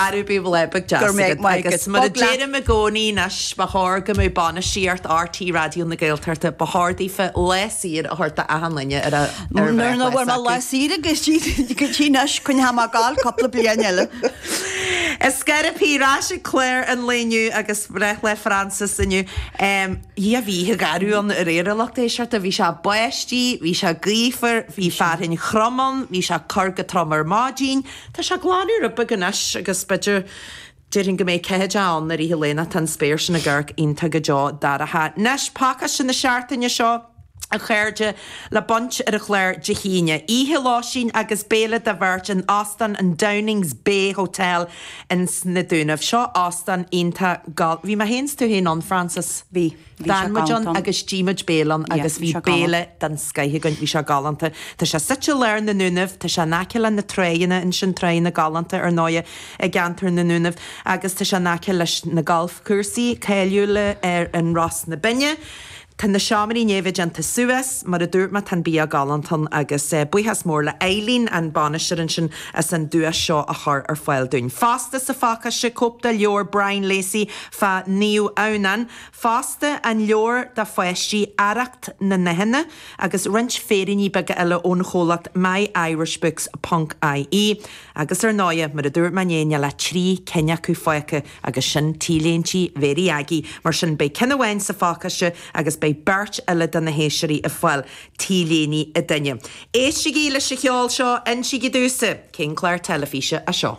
Arú bíodh breithlá beag deas agat. Go raibh maith agat. Agus mar a deirim i gcónaí, anois ba chóir go mbeadh bainistíocht RTÉ Raidió na Gaeltachta, ba chóir daofa lá saor a thabhairt do achan duine ar a bhreithlá acu. Muna bhfuair mé lá saor ag RTÉ anois, coinneoidh mé ag gabháil cúpla bliain eile. Is cé bith, ar ais ag clár an lae inniu agus breithlá Frances inniu. Dhia bhí oíche gharbh ann aréir a lucht éisteachta, bhí sé báistí, bhí sé gaofar, bhí fearthainn throm ann, bhí sé ag cur go trom ar maidin, tá sé ag glanadh rud beag anois agus b'fhéidir, déarfainn go mbeidh ceatha de ann i rith an lae ná tá an spéir sin ag amharc iontach go deo dorcha. Anois, pacáiste na seachtaine seo. a chairde le baint ar an chlár Dé hAoine. Oíche lóistín agus béile do bheirt in Óstán an Downings Bay Hotel ins Na Dúnaibh. Seo óstán iontach gal. Bhí mé féin 's tú féin ann, Frances? Bhí. Bhí sé galánta. D'fhan muid ann agus d'ith muid béile ann agus bhí béile den scoith againn. Bhí sé galánta. Tá sé suite i lár na nDúnaibh. Tá sé in aice le na tráigheanna ansin, tráigheanna galánta ar ndóighe i gceantar na nDúnaibh, agus tá sé in aice leis na galfchúrsaí cáiliúla ar an Ros na Binne. Tá na seomraí i ndiaidh a bheith déanta suas, mar a dúirt mé, tá an bia galánta ann agus buíochas mór le Eileen, an bainisteoir ansin, as an duais seo a chur ar fáil dúinn. Fosta sa phacáiste, cóip de leabhar Brian Lacey fá Naomh Adhamhnán, fosta an leabhar do pháistí, Arracht na nDathanna, agus roinnt féiríní beaga eile ón chomhlacht myirishbooks ponc ie, agus ar ndóighe, mar a dúirt mé inné, níl ach trí cinn acu fágtha! Agus sin T-léintí Mhary Aggie, mar sin beidh ceann amháin sa phacáiste agus beidh beirt eile de na héisteoirí ag fáil T-léine an duine. Éistigí leis an cheol seo, insígí domhsa cén clár teilifíse é seo!